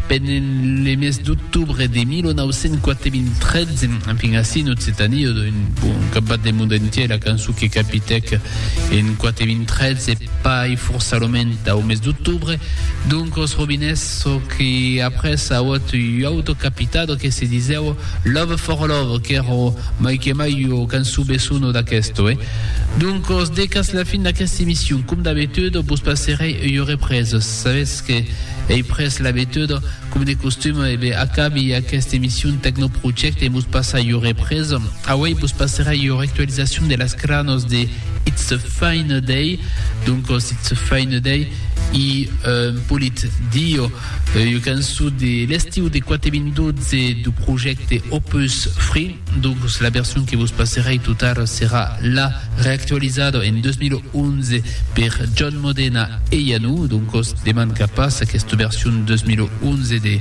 Pendent le mes d'octobre de 1993, enfin ací en Occitània, un cap bat le monde entièr, la cançon que capitèc en 93 e pas forçalament au mes d'octobre, donc os robinets, çò que après auot ua auto capitado que se disèu Love for Love, qu'èra mai que mai ua cançon besonh d'aquesto. Donc os decas la fin d'aquesta emission, com d'abitude, vos passerè ua represa. Sabetz que ei pres l'abituda, com de costum, e be acabi aquesta emission Tecno Project e vos passar ua represa. Auei vos passera ua actualisacion de las cranos de It's a Fine Day, doncos It's a Fine Day i un polit dio, ua cançon de l'estiu de 4 min 12 du projecte Opus Free. Doncus la version que vos passerèi tot ara serà la reactualizada en 2011 per John Modena e Iannou, doncus demanca pas aquesta version 2011 de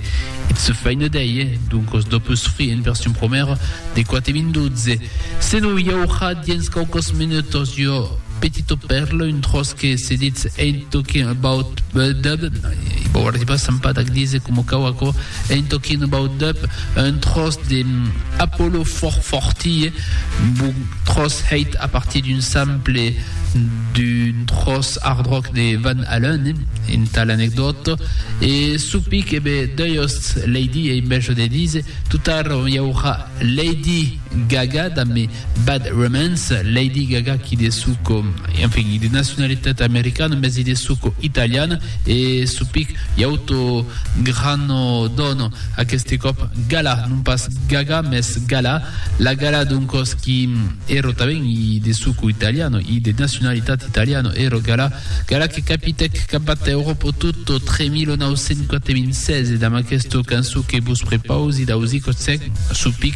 It's a Fine Day, doncus dop usfrir en version promèra de 4012. Senon i aurà diens quauques minutas ua petita pèrla, un tròç que se ditz Ain't Talking About Dub, i vau arribar s'empadar ac díser coma cau aquò. Ain't talking about dub, un tròç de Apollo fòrt fòrtilh, book tròç hèit a partir d'un sample d'un tròç hard rock de Van Halen, entà l'anecdòta, e supic, e be, deuiost, Lady, ei mèjor de díser, tot ara i aurà Lady! Gaga damb Me Bad Romance, Lady Gaga qui de suco, enfin, de nacionalitat americana mès i de suco italiana e supic i auto grano dono, aqueste còp Gala, non pas Gaga mès Gala, la Gala d'un còs qui èro tanben i de suco italiano i de nacionalitat italiano, èro Gala, Gala que capitèc qu'abat Euròpo tutto tre 1996 e damb aquesta cançon que vos prepausi d'ausicotsèc, supic